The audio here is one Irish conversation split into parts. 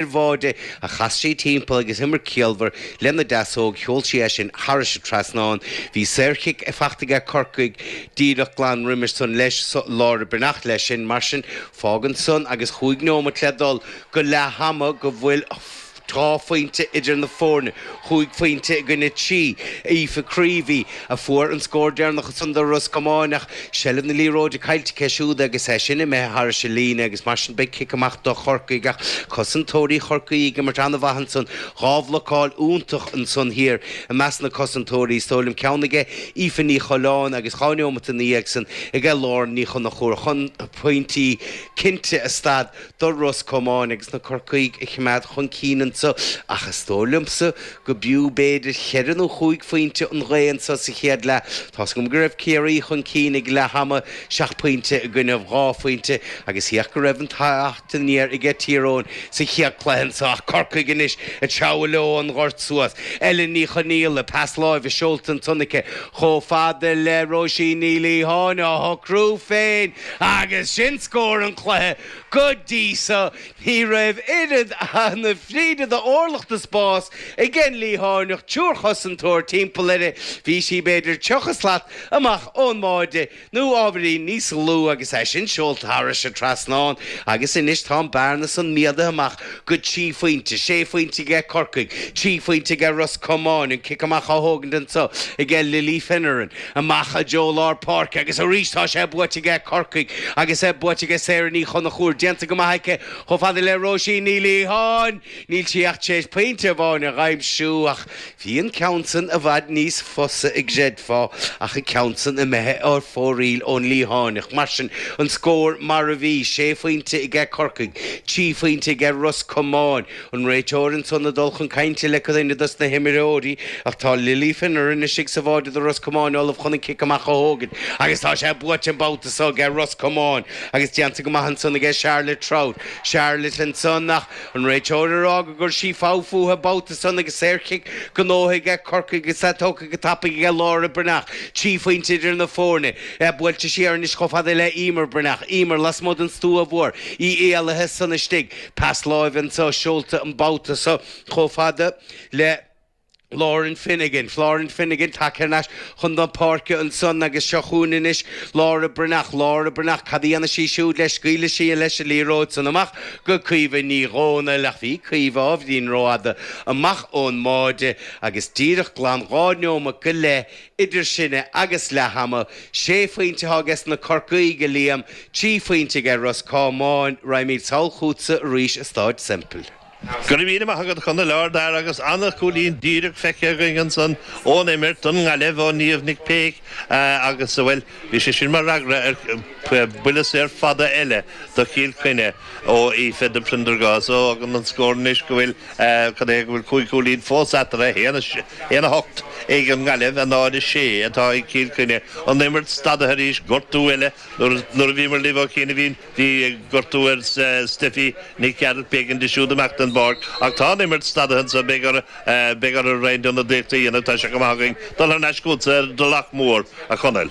ar bháide, a chas sí timpeall agus imirt chiallmhar lena deasóg, sheol sí é sin thairis an trasnán. Bhí saorchic fachta aige Corcaigh díreach glan roimis san leis so, Laura Breathnach leis sin, mar sin, fágann san agus chúig neomat le dul go leath ama go bhfuil dhá phointe idir na foirne. chúig phointe i gcoinne trí. Aoife Creevy a fuair an scór deireanach ansan do Ros Comáin ach seilbh na liathróide caillte aici siúd agus é sin imithe thairis an líne agus mar sin beidh cic amach do Chorcaigh ach cosantóirí Chorcaí ag imirt an-mhaith ansan. Dhá bhlocáil iontach ansan thiar i measc na cosantóirí, is dóigh liom ceann aige Aoife Ní Choileáin agus dhá neomat ina dhiaidh san aige Lauren Ní Chonchúir chun pointí cinnte a stad. do Ros Comáin agus na Corcaígh a choimeád chun cinn anseo ach is dóigh liomsa go mb'fhiú b'fhéidir cheithre nó chúig phointe an ghaoth anseo sa chéad leath. Tá's agam go raibh Ciarraí chun cinn ag leath ama seacht bpointe i gcoinne dhá phointe agus thiocfadh go raibh an teacht aniar aige Tír Eoghain sa chéad cluiche anseo ach Corcaigh anois ag treabhadh leo an gort suas. Ellen Ní Chonaill le pas láimhe seolta ansan aici chomh fada le Róisín Ní Liatháin á shocrú féin! Agus sin scór an chluiche. Go dtí so, ní raibh oiread na fríde d'orlach de spás ag an Liathánach, triúr chosantóir timpeall uirthi. Bhí sí, b'fhéidir, tríocha slat amach ón mbáide, nó ábhairín níos lú, agus é sin seolta thairis an trasnán. Agus anois tá an bearna san méadaithe amach go trí phointe, sé phointe aige Corcaigh, trí phointe aige Ros Comáin, an cic amach á thógaint anso aige Lily Finneran. Amach i dtreo lár páirce agus arís tá sé buaite aige Corcaigh agus é buaite aige Sarah Ní Chonchúir déanta go maith aici chomh fada le Róisín Ní Liatháin. Níl sí ach tar éis pointe amháin a dh'aimsiú ach bhí an ceann san i bhfad níos fusa an gcreidfeá ach an ceann san imithe ar fóraoil ón Liathánach. Mar sin an scór mar a bhí, sé phointe aige Corcaigh, trí phointe aige Ros Comáin. An réiteoir ansan ag dul chun cainte le duine dos na himreoirí ach tá Lily Finneran istigh sa bháide do Ros Comáin ullamh chun an cic amach a thógaint agus tá sé buaite an babhta so aige Ros Comáin agus déanta go maith ansan aige Charlotte Trout. Charlotte ansan ach an réiteoir ag rá gur chuir sí fogha fúithi an babhta san agus saorchic gnóthaithe aige Corcaigh agus tá tógtha go tapaidh aige Laura Breathnach. Trí phointe idir na foirne. Tá buailte siar anois chomh fada le Eimear Breathnach. Eimear lasmuigh den stua mhór. Í éalaithe ansan istigh. Pas láimhe anso seolta an babhta seo chomh fada le Lauren Finnegan, Lauren Finnegan, tagtha ar ais chun tóin páirce ansan agus seo chugainn anois Laura Breathnach, Laura Breathnach, cad a dhéanfaidh sí siúd leis? Scaoileann sí leis an liathróid san amach go Caoimhe Ní Dhomhnaill ach bhí Caoimhe ábhairín rófhada amach ón mbáide agus díreach glan dhá neomat go leith Idir sinne agus leath ama, sé phointe atá aige sna Corcaígh, a Liam, trí phointe aige Ros Comáin, raghaimid sall chútsa arís i Staid Semple. Go raibh míle maith agat, a Chonaill, ardfhear, agus an-chúilín díreach feicthe againn ansan ón imirt, don nGaillimh, ó Niamh Nic Péic, agus, bhuel, Bhí sé sin mar fhreagra ar buille saor fada eile do Chill Chainnigh ó Aoife de Prendergast. So fágann an scór anois go bhfuil, cad é, go bhfuil cúig chúilín fós eatarthu, 1, 8 ag an nGaillimh, 0, 6 atá ag Cill Chainnigh. An imirt stadaithe arís gortú eile nuair a bhíomar libh ó chianaibhín. Bhí gortú ar Steffi Nic Gearailt, b'éigean di siúd imeacht den bpáirc ach tá an imirt stadaithe anseo. Beidh orthu araon ionadaíocht a dhéanamh, tá sé go maith againn dul thar n-ais chugatsa ar an dTulach Mór, a Chonaill.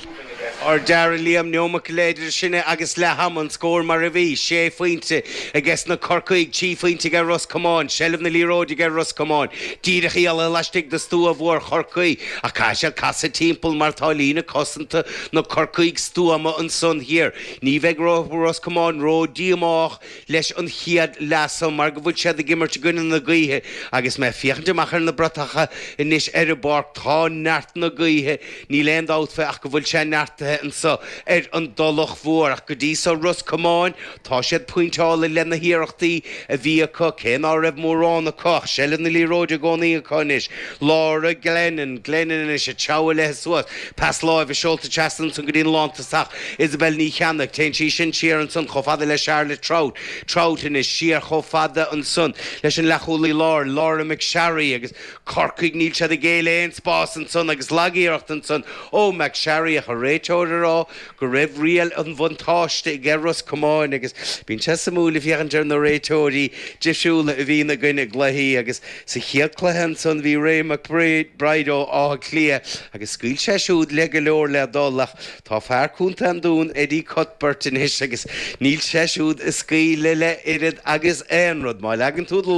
An dara nóiméad, Liam, nóiméad go leith idir sinne agus leath ama, an scór mar a bhí, sé phointe age na Corcaígh, trí phointe age Ros Comáin, seilbh na liathróide age Ros Comáin, díreach i leith laistigh de stua mhór Chorcaí ach caithfidh siad casadh timpeall mar tá líne cosanta na gCorcaíoch stuama ansan thiar. Ní bheidh Ros Comáin ró-díomách leis an chéad leath so mar go bhfuil siad ag imirt i gcoinne na gaoithe agus mé ag féachaint amach ar na bratacha anois ar an bpáirc, tá neart na gaoithe, níl aon dabht fé ach go bhfuil sé neartaithe anso ar an dTulach Mhór. Ach go dtí so, Ros Comáin, tá siad pointeáilte leis na hiarrachtaí a bhí acu, cé ná raibh mórán acu ach seilbh na liathróide i gcónaí acu anois. Laura Glennon, Glennon anois ag treabhadh léi suas, pas láimhe seolta trasna ansan go dtí an lántosaithe ach, Isobel Ní Cheannaigh, téann sí sin siar ansan chomh fada le Charlotte Trout, Trout anois, siar chomh fada ansan leis an leathchúlaí láir, Laura McSharry, agus Corcaigh, níl siad ag géilleadh aon spás ansan agus lag-iarracht ansan ó McSharry, ach an réiteoir a rá go raibh riail an bhuntáiste aige Ros Comáin agus bíonn sé suimiúil ag féachaint ar na réiteoirí difriúla a bhíonn againn i gcluichí agus sa chéad cluiche ansan bhí Ray McBride ó Áth Cliath agus scaoil sé siúd le go leor le dul ach Tá fear Contae an Dúin, Eddie Cuthbert, anois agus níl sé siúd ag scaoileadh le hoiread agus aon rud. Má leagann tú do